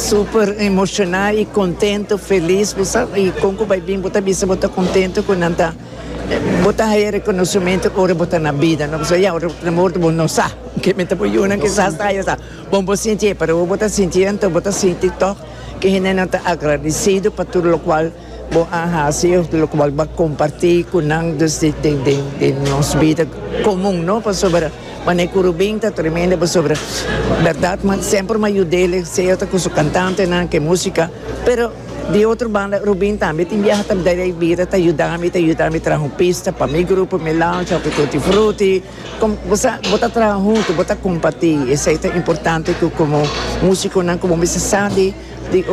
Super emociona y contento, feliz bo sa y con cu bay bin bo ta bisa bo ta contento cu nan ta bo ta haya reconocimiento ora bo ta na bida no pasobra ya ora na morto bo no sa ke menta bo yu nan kisas ta haya sa con bo sintié pero ora bo ta sintié enton bo ta sinti toc ke hendenan ta agradecido pa tur locual Bo a hasi lokual bo a kompartí ku nan dus di nos bida komun no pasobra manera ku Rubin ta tremendo pasobra bèrdat mi semper mi a yud'el sea ta ku su kantantenan ku e músika pero di otro banda Rubin tambe tin biaha ta dal e bida ta yuda mi ta yuda mi traha un pista pa mi grupo mi launch òf e tutti frutti kòm bo sa bo ta traha huntu bo ta kompartí esei ta importante ku komo músikonan ku bo bisa sa di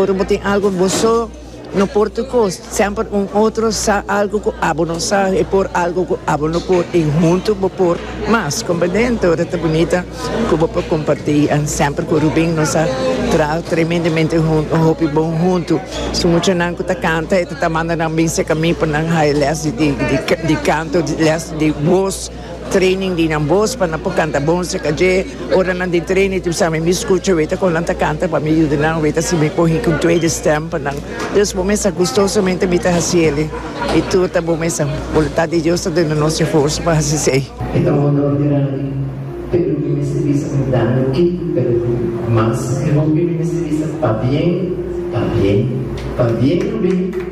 ora bo tin algu bo so. No por tur cos, semper un otro sa algo cu abo no sa y por algo cu abo no por y hunto bo por mas. Compendente ora ta bunita cu bo por comparti and semper cu Rubin nos a traha tremendemente hunto, un hopi bon hunto. Su muchanan cu ta canta e ta ta manda nan bin secami pa nan haya les di canto, les di voz. Training di nan bos pa nan por canta bon acerca dje. Ora nan den training tin sabi mi scucha weta con nan ta canta pa mi yuda nan weta si mi cogi cu tweede stem pa nan. Deus bo mesa gustosamente mi ta haci eli y tur ta bo mesa. Voluntad di Dios ta duna nos dje forsa pa haci esey. E ta un honor grandi, pero mi mester bisa cu daño ki, pero cu mas. Mi hopi mi mester bisa pabien, pabien, pabien lo bini.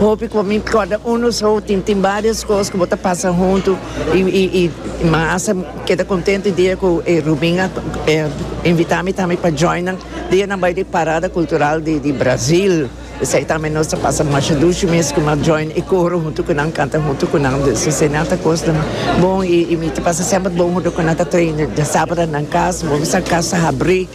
Hopi cu mi corda uno so tin tin varios cos cu bo ta pasa hunto y y y mi hasta keda contento e dia cu e Rubin a invita mi tambe pa joina dia nan bay di parada cultural di di Brazil esey tambe nos ta pasa masha dushi mes cu mi a join e coro hunto cu nan canta hunto cu nan dus esey nan ta cosnan bon y y mi ta pasa semper bon hunto cu nan ta traina sabanan nan cas bo bisa cas ta habri.